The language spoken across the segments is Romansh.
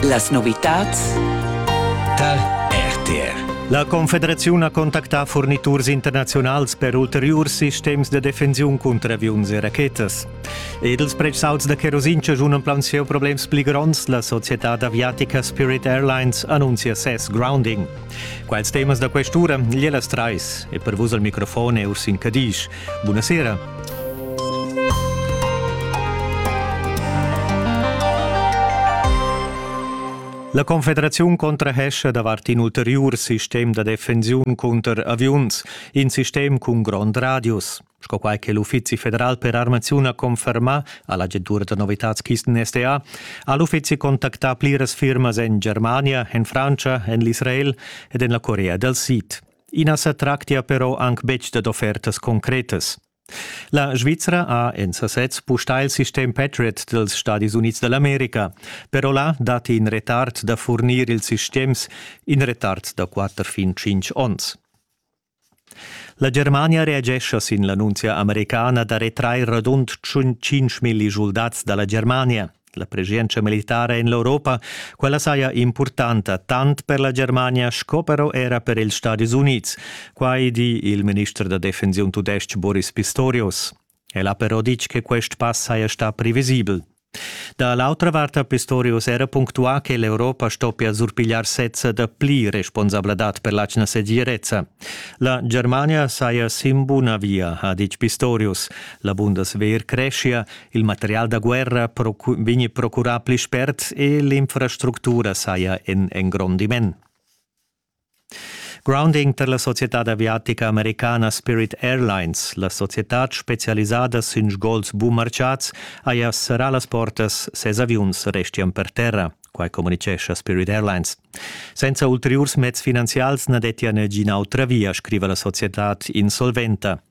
Las novitads tar RTR. La Confederaziun ha contactà furniturs internaziunals per ulteriurs sistems da defensiun cunter aviuns e rachetas. Ed ils prezzauts da cherosin chaschunan plaunsieu problems pli gronds. La societad aviatica Spirit Airlines annunzia ses grounding. Quels temas da questura, gliellas trais. E per vus al microfon è Ursin Cadisch. Bunasera. La Confederaziun contrahescha davart in ulteriur sistem da defensiun cunter aviuns, in sistem cun grond radius. Sco quai che l'Uffizi federal per armaziun ha confermà a l'agentura da novitads-kisten SDA, ha l'uffizi contactà pliras firmas en Germania, en Frantscha, en l'Israel ed en la Corea dal Sid. I na sa tractia però anc betg dad offertas concretas. La Svizra ha en sasez pustà il sistem Patriot dels Stadis Unids dall'America, però là datti in retard da furnir ils sistems, in retard da quatter fin tschintg onns. La Germania reagescha sin l'annunzia americana da retrair radund 5 milli schuldats da la Germania. La preschientscha militara en l'Europa, quella saja impurtanta tant per la Germania sco però era per ils Stadis Unids. Quai di il minister da defensiun tudestg Boris Pistorius. El ha però ditg che quest pass saja stà previsibel. Da l'autra vart ha Pistorius era punctuà che l'Europa stoppia surpigliar sezza da pli responsabladad per l'atgna segirezza. La Germania saja sin buna via, ha ditg Pistorius. La Bundeswehr creschia Il material da guerra vegni procurà pli spert e l'infrastructura saja en engrondiment. Grounding per la societad aviatica americana Spirit Airlines, la societad specialisada sün sgols bumarciats, haja serrà las portas, ses aviuns restian per terra, quai comunicescha Spirit Airlines. Senza ulteriurs mezs finanzials na dettia nagina autra via, scriva la societad insolventa.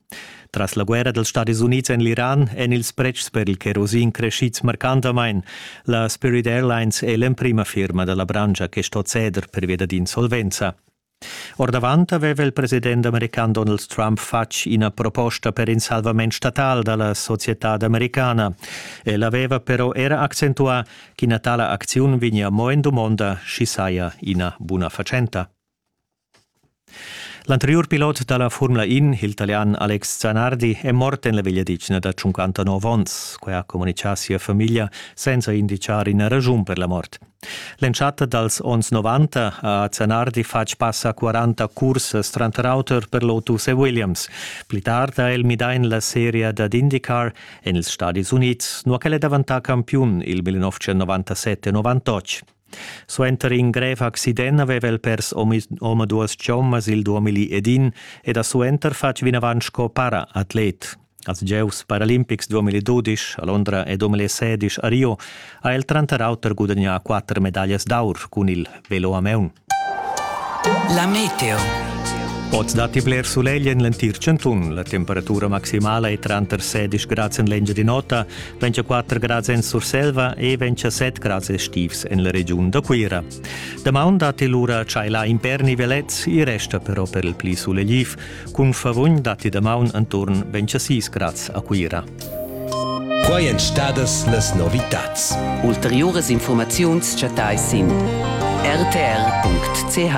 Tras la guerra dals Stadis Unids en l'Iran èn ils pretschs per il kerosin creschids marcantamain. La Spirit Airlines è l'emprima firma da la branscha che sto ceder pervia dad insolvenza. Ordavant aveva il president american Donald Trump fatg ina proposta per in salvament statal da la societad americana. El aveva però era accentuà ch'ina tala acziun vegnia mo en dumonda, sch'i saja ina buna fatschenta. L'anteriur pilot da la Formula In, il Italian Alex Zanardi, è mort en la vegliadetgna da 59 onns. Quai ha communitgà sia famiglia senza inditgar ina raschun per la mort. L'entschatta dals onns 90 ha Zanardi fatg pass a 40 cursas tranter auter per Lotus e Williams. Pli tard ha el midà en la seria dad IndyCar en ils Stadis Unids, nua ch'el è daventà campiun il 1997-98. Suenter in grev accident aveva el pers omaduas chommas il 2001 ed ha suenter fatg vinavant sco para-atlet. Als gieus paralimpics 2012 a Londra e 2016 a Rio ha el tranter auter gudagnà quatter medaglias d'aur cun il velo a maun. La meteo. Oz datti bler sulegl en l'entir chantun. La temperatura maximala è tranter 16 grads en l'Engiadin'Ota, 24 grads en Surselva e 27 grads estivs en la regiun da Cuira. Damaun datti lura tschaila imperni velets, i resta però per il pli sulegl. Cun favugn datti damaun enturn 26 grads a Cuira. Quai èn stadas las novitads. Ulteriuras informaziuns chattais sin rtr.ch.